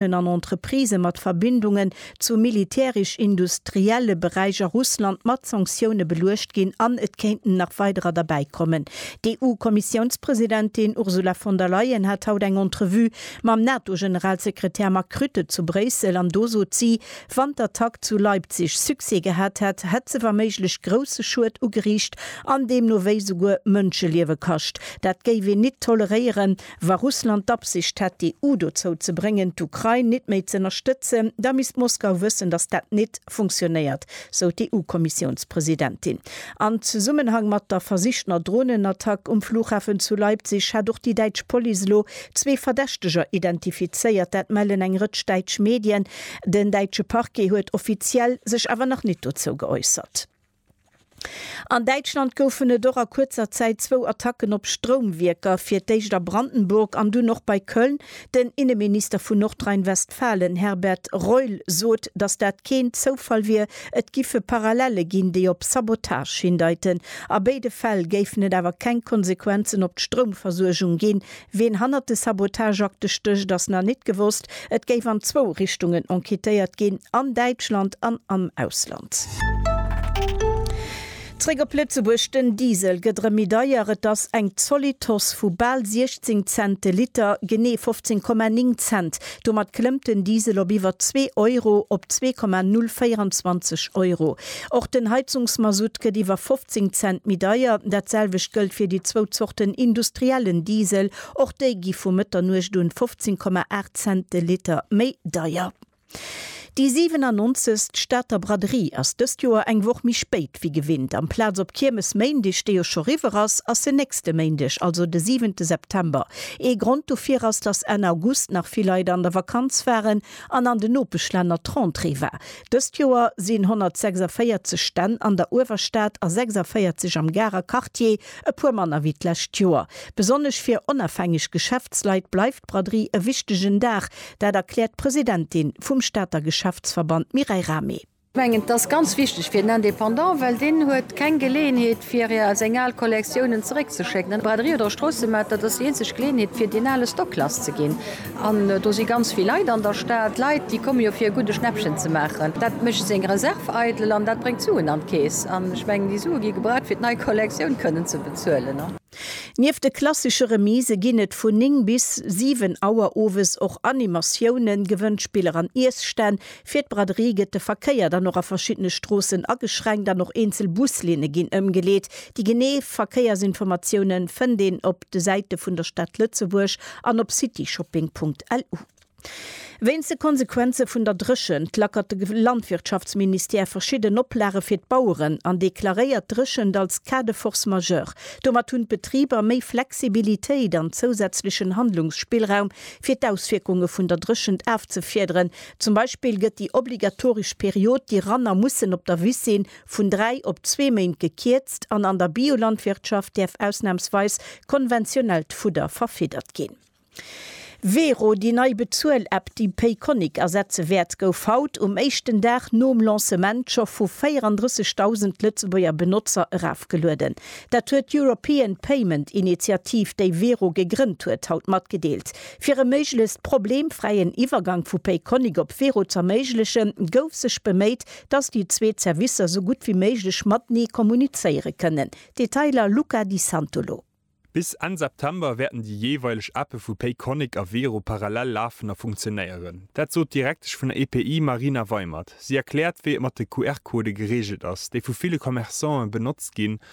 Firmen an Entreprisë mat Verbindungen zu militärisch-industrielle Beräich a Russland mat Sanktioune beluecht ginn an et kéinten nach weiderer derbäi kommen. D'EU-Kommissiounspresidentin Ursula von der Leyen hat haut eng Entrevue mam NATO-Generalsekretär Mark Rutte zu Bréissel an do sot si, wann d'Attack zu Leipzig Succès gehat hätt, hätt se waméiglech grousse Schued ugeriicht an deemno wéi souguer Mënscheliewe kascht. Dat géif een nit toleréieren Wa Russland d'Absicht hätt, d'EU dozou ze bréngen, d'Ukrain nit méi z'ënnerstëtzen, da misst Moskau wëssen, datt dat nit funktionéiert, sou d'EU-Kommissiounspresidentin. An Zesummenhang mat der versichtener Dronenattack um Flughafen zu Leipzig hätt och déi däitsch Police elo zwee Verdächteger identifizéiert. Dat mellen eng Rëtsch däitsch Medien. Den däitsche Parquet huet offiziell sech awer nach nit dozou geäussert. An Däitschland goufen et och a kuerzer Zäit zwou Attacken op Stroumwierker, fir d'éischt a Brandenburg an dunn och bei Köln. Den Inneminister vun Nordrhein-Westfalen Herbert Reul sot, datt dat keen Zoufall wier. Et giffe Parallelle ginn, déi op Sabotage hindeiten. A béide Fäll géifen et awer keng Konsequenzen op d'Stroumversuergung ginn, Ween hannert de Sabotageakte stécht ass nach nit gewosst. Et géif an zwou Richtungen enquêtéiert ginn, an Däitschland an am Ausland. Zréck op Lëtzebuerg, Den Diesel gëtt erëm méi deier, et ass eng zolidd Hausse vu bal 16 Cent de Liter, genee 15,9 Cent Domat klëmmt den Diesel op iwwer zwee Euro, op 2,024 Euro. Och den Heizungsmasutt gëtt iwwer 15 Cent méi deier. Dat selwecht gëllt fir déi zwou Zorten industriellen Diesel. Och déi gi vu Mëtternuecht un 15,8 Cent de Liter méi deier. Déi 97. Stater Braderie ass dëst Joer eng Woch méi spéit wéi gewinnt. Amplaz op Kiermesméindeg, dee jo scho riwwer ass, ass se nächste Méindeg, also de 7. September. Ee Grond dofir ass, dass Enn August nach vill Leit an der Vakanz waren an an den Nopeschlänner d'Rentrée war. Dëst Joer sinn 146 Stänn an der Uewerstad a 46 am Garer Quartier E puer manner wéi d'lescht Joer. Besonnesch fir onafhängeg Geschäftsleit bleift d'Braderie e wichtegen Dag. Dat erkläert d'Presidentin vum Stater Geschäftsverband Mireille Rahmé. Ech mengen, et ass ganz wichteg fir den Indépendant, well deen huet keng Geleeënheet, fir seng al Kollektiounen zeréckzeschécken. An d'Braderie oder Stroossemat, dat ass déi eenzeg Geleeënheet, fir deen ale Stock lasszeginn. An do si ganz vill Leit an der Stad. Leit, déi komme jo fir e gudde Schnäppchen ze maachen. Dat mécht seng Reserv eidel an dat bréngt Suen an d'Keess. An ech mengen, déi Sue gi gebraucht, fir d'nei Kollektioun kënnen ze bezuelen. Nieft de klassesche Remise ginn et vun 9 bis 7 Auer owes och Animatiounen, Gewënnspiller an Iesstänn. Fir d'Braderie gëtt de Verkéier dann och a verschiddene Stroossen ageschränkt an och eenzel Buslinne ginn ëmgeleet. Déi genee Verkéiersinformatiounen fënnt een op. de Säite vun der Stad Lëtzebuerg an op cityshopping.lu. Wéinst de Konsequenze vun der Dréchent lackert de Landwirtschaftsministère verschidden Oplage fir d'Baueren an deklaréiert d'Dréchent als Cas de force majeure. Domat hunn d'Betriber méi Flexibilitéit an zousätzlechen Handlungsspillraum, fir d'Auswierkunge vun der Dréchent afzefiederen. Zum Beispill gëtt déi obligatoresch Period, déi Ranner mussen op der Wiss sinn, vun dräi op zwee Méint gekierzt an an der Biolandwirtschaft däerf ausnamsweis konventionellt Fudder verfiddert ginn. Vero, déi nei Bezuel-App, déi Payconiq ersetze wäert, gouf haut, um éischten Dag nom Lancement, scho vu 34.000 Lëtzebuerger Benotzer erafgelueden. Dat huet d'European Payment Initiative, déi Vero gegrënnt huet, haut matgedeelt. Fir e méiglechst problemfräien Iwwergank vu Payconiq op Vero z'erméiglechen, gouf sech beméit, dass déi zwee Zerwisser esou gutt wéi méiglech matenee kommunizéiere kënnen. Detailer, Luca Di Santolo. Bis Enn September wäerten déi jeeweileg Appe vu Payconiq a Wero parallel lafen a funktionéieren. Dat sot d'Direktesch vun der EPI Marina Weimert. Si erkläert, wéi et mat de QR-Codë gereegelt ass, déi vu ville Commerçanten benotzt ginn,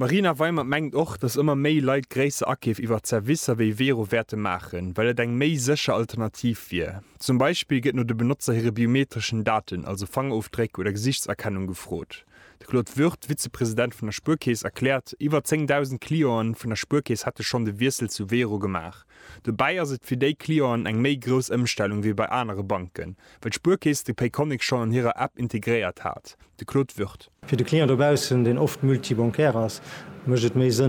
D'Marina Weimer mengt och, datt ëmmer méi Leit gréisser Akeef iwwert Servicer wéi Vero wäerte maachen, well et eng méi sécher Alternativ wier. Zum Beispill gëtt no de Benotzer hire biometreschen Daten, also Fangerofdréck oder Gesichtserkennung gefrot. De Claude Würth, Vizepresident vun der Spuerkeess, erkläert, iwwer 10.000 Clienten vun der Spuerkeess hätte schonn de Wiessel zu Vero gemaach. Dobäi ass et fir déi Clienten eng méi grouss Ëmstellung wéi bei anere Banken, Well d'Spuerkeess de Payconiq schonn an hirer App integréiert hat. De Claude Würth. Fir de Client dobaussen, deen oft multi-bancaire ass, mécht et méi Sënn,